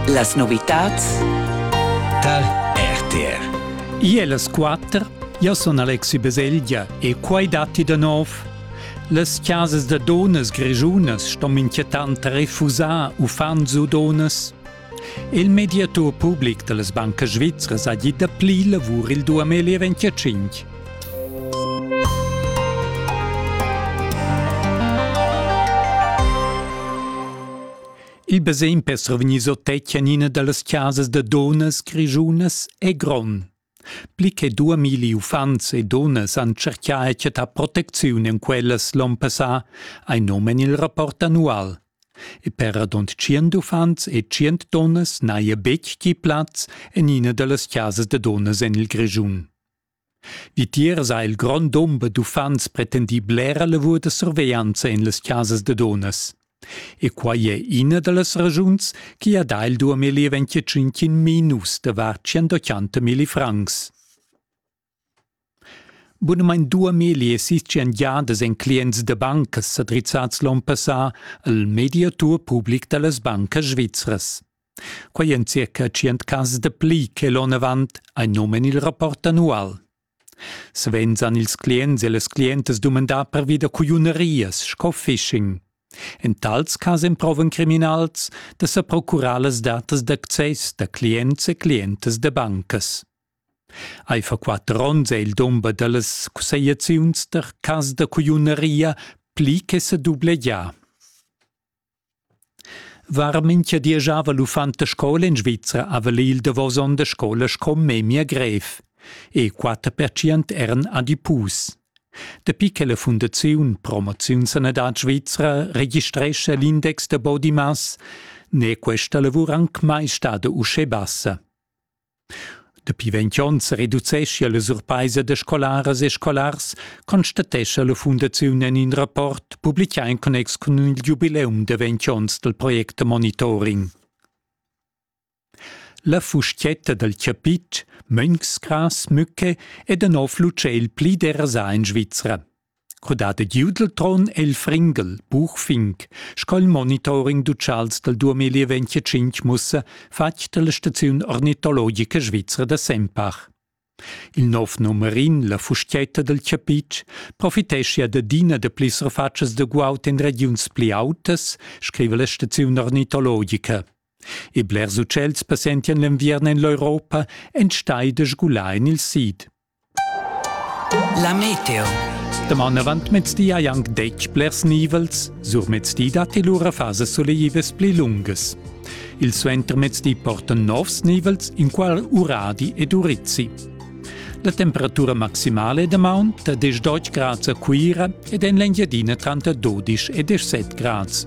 Las novitads tar RTR. Io las quatter, io sun Alexi Baselgia e quai datti da nov. Las chasas da donas grischunas ston inquietant refusar uffants u donas. Il mediatur public da las bancas svizras ha dit dapli lavur il 2025. Il basegn per survegnir sottetganina dallas casas da dunnas grischunas è gron. Pli che dua milli uffants e dunnas han cercà e chattà protecziun en quellas l'onn passà, hai nom en il rapport annual. E per radund tschient uffants e tschient dunnas n'haja betg gì plaz en ina da las casas da dunnas en il Grischun. Vitiers ha il grond dumber d'uffants pretendì blera lavur da surveglianza en las chasas da dunnas. E quai è ina da las ragiuns che ha dà il 2025 minus davart 180 milli francs. Bunamain dua meli esistian giadas en clients da bancas sa drizzads l'onn passà al mediatur public da las bancas svizras. Quai en circa tschient cas de pli che l'onn avant, ei nomen il rapport annual. Savens han ils clients e las clientas dumandà pervi da cugliunerias sco phishing. In tals cas emprovan criminals da sa procurar las datas d'access da clients e clientas da bancas. Ei fa quatter onns è il dumber dallas cussegliaziuns der cas da cugliuneria pli che sa dublegià. Var mincha di giava l'uffant a scoula in Svizra a vala il davos on da scoula sco memia grev. E quatter pertschient eran adipus. Dapi che la Fundaziun Promoziun Sanadad Svizra registrescha l'index da body mass, n'è questa lavur anc mai stada uschè bassa. Dapi ventg onns reducescha la surpaisa da scolaras e scolars, constatescha la fundaziun en in rapport publicà en connex cun il giubileum da ventg onns dal project Monitoring. La fustietta dal chapit, Mönchsgras Mücke, è da nov l'utschel pli derasà en Svizra. Crudada giu dal tron è il Fringel, buch fink, sco'l monitoring d'utschals dal 2025 mussa, fatg da la staziun ornitologica svizra da Sempach. Il nov numerin, la fustietta del chapitsch, profiteschia d'adina da pli surfatschas da guaut in regiuns pli autas, scrive la staziun ornitologica. E blers utschels passentian l'enviern en l'Europa enstai da sgular en il sid. La meteo. Daman avant mezdi hai anc detg blers nivels, sur mezdi datti lura fasas soleivas pli lungas. Il suentermezdi portan novs nivels in qual Uradi ed Urizzi. La temperatura maximale damaun ta 10 grads a Cuira ed en l'Engiadina tranter 12 e 17 grads.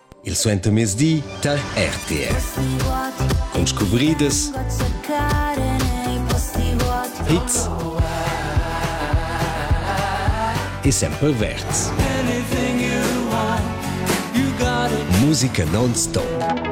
Il suentermezdi tar RTS. Cun scuvridas, hits e sempre verds. Musica non-stop.